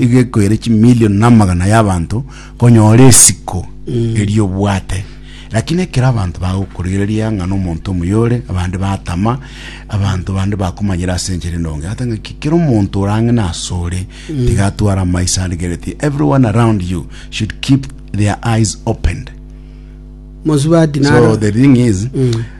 igekoire chimilioni namagana y'abanto konyora esiko eria obwate lakini ekero abanto bagokorigereria ng'a nomonto omoyore abande batama abanto bande bakomanyera ase enchera endonge ata ng'a ki- kera omonto orang'ina ase ore tiga atware amaiso arigereti everyone around you should keep their eyes opened Mosubati so naro. the thing is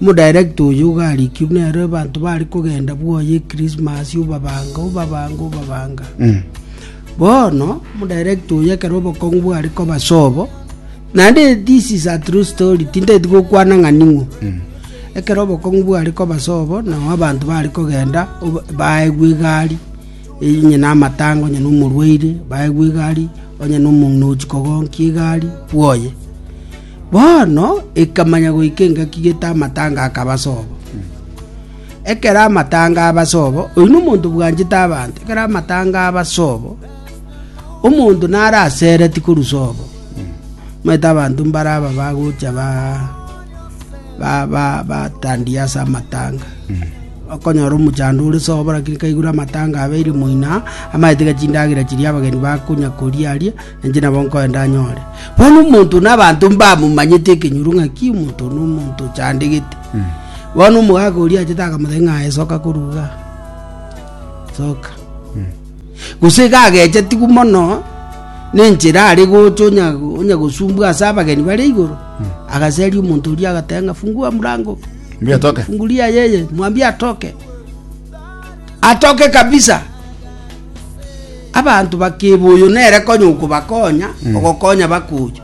Omodirector oyo ogarikirwe nere abanto bare kogenda bwoye Ekrismasi obabanga, obabanga, obabanga. Bono omodirector oyo ekero obokong'u bware koba sobo, naende this is a true story, tinteti gokwana ng'a ning'o. Ekero obokong'u bware koba sobo, nao abanto bare kogenda oba- baegwe egari, eye onye na amatanga, onye na omorwaire, baegwe egari, onye na omong'ina ochi kogonkia egari, bwoye. Bono ekamanya goika engaki gete amatanga akaba ase obo. Ekero amatanga aba ase obo, oyio nomonto bwanchete abanto, ekero amatanga aba ase obo, omonto nare asereti korusa obo. Omanyete abanto mbare aba bagocha ba ba ba batandia ase amatanga. Okonyora omochando ore ase obo lakini kaigure amatanga abeire moino aa, amanyete iga chindagera chiria abageni bakonya koria aria, Inche nabo nkoe ndanyore. Bono omonto na abanto mbamomanyete ekenyoro ng'aki omonto one omonto ochandegete. Bono omogaka oria achete akamoteba ng'aye soka koruga. Soka. Gose iga agechetigwe mono nenchera are gocha onya onya gosumbwa ase abageni bare igoro. Agaseria omonto oria agateba ng'a fungua mlango. Mbia toke. Fungulia yeye, mwambie atoke. Atoke kabisa. Abanto bakeba oyo nere konya okobakonya, ogokonya bakocha.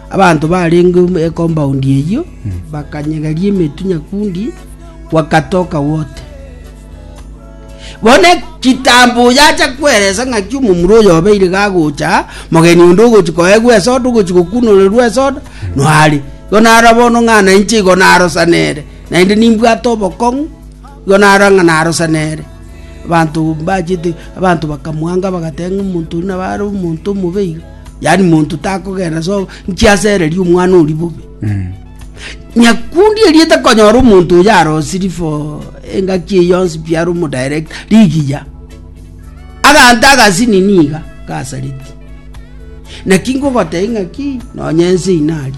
Abanto barenge ekombaund eyio bakanyegeria emetwe nyakundi, gwakatoka wote. Bono ekitambo oyo acha kweresa ng'aki omomura oyo obeire gagocha, mogeni onde ogochi koegwa esoda, ogochi gokunorerwa esoda, noare. Igo naro bono ng'a nainche igo narosanere, naende nimbwate obokong'u, Igo narora ng'a narosana ere. Abanto mbachete, abanto bakamwanga bagateba ng'a omonto oyio nabo are omonto omobe iga, yaani monto takogenda ase obo, inki asereria omwana oria bobe? Nyakundi eria etakonyora omonto oyo arosirie for engaki eye yonsi pi are omodirect, rigiya. Agante agasinini iga, gasareti. Naki ngogotebi ng'aki, nonye ense inari.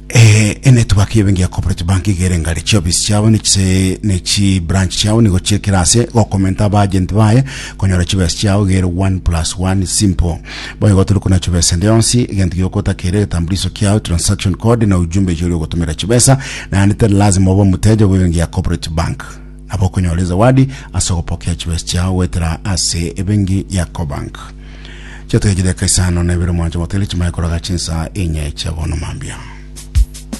Eh, enetwaki y'ebenki ya Cooperative Bank iga ere ngare chiofisi chiabo ne chise ne chi branch chiabo nigo chiekera ase gokomenta abagent baye konyora chibesa chiao iga ere 1 plus 1 simple boigo otari kuna chibesa ende yonsi egento giokotakera egetambuliso kiao transaction code na ujumbe echi ori ogotomera chibesa naende tari lazima obe omoteja bw'ebenki ya Cooperative Bank nabo okonyora ezawadi ase ogopokea chibesa chiao goetera ase ebenki ya Cobank Chatwechire eka isano na ibere mwanche motele chimanye koroga chinsa inye chiabono mambia.